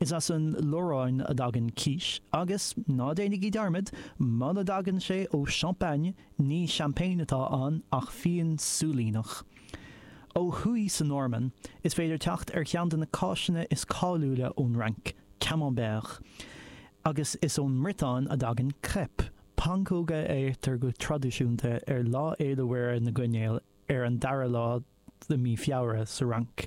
Is as an Lorraine a dtagann quiche, agus, ná déanaigí dearmad, muna dtagann sé ó Champagne, ní seaimpéin atá ann ach fíon súilíneach. Ó thuaidh sa Normainn, is féidir teacht ar cheann de na cáiseanna is cáiliúla ón Fhrainc, Camembert, agus is ón mBriotáin a dtagann crêpe, pancóga a ithtear go traidisiúnta ar Lá Fhéile Mhuire na gCoinnéal ar an dara lá de mhí Feabhra sa Fhrainc.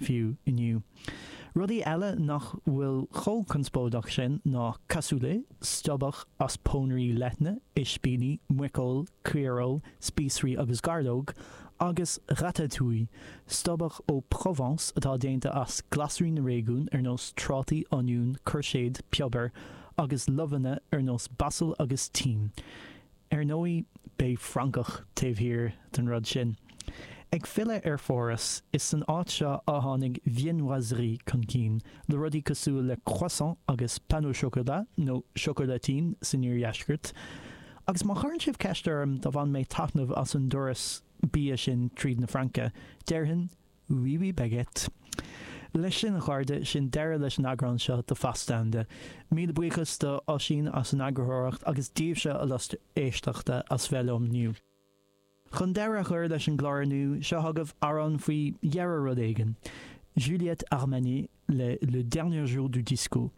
fiú inniu. Rudaí eile nach bhfuil chomh conspóideach sin ná cassoulet, stobhach as pónairí leithne, ispíní, muiceoil, caoireoil, spíosraí agus gairleog, agus ratatouille, stobhach ó Provence atá déanta as glasraí na réigiún ar nós trátaí, oinniúin, cúirséad, piobar, agus luibheanna ar nós basal agus tím. Ar ndóigh, beidh Francach taobh thiar den rud sin. Ag filleadh ar Pháras, is san áit seo a tháinig viennoiserie chun cinn, le rudaí cosúil le croissant agus pain au chocolat, nó chocolatine san iardheisceart. Agus má chuireann sibh ceist orm ar bhain mé taitneamh as an dturas bia sin tríd na Fraince, déarfainn, Oui, oui, Baguette. Leis sin, a chairde, sin deireadh leis an eagrán seo de Fastanda. Míle buíochas do Oisín as an eagarthóireacht agus daoibhse, a lucht éisteachta, as bheith liom inniu. Chun deireadh a chur leis an gclár inniu, seo chugaibh amhrán faoi dheireadh rud éigin, Juliette Armanet le Le Dernier Jour du Disco.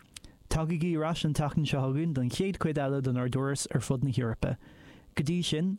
Tagaigí ar ais an tseachtain seo chugainn don chéad chuid eile den ár dturas ar fud na hEorpa. Go dtí sin,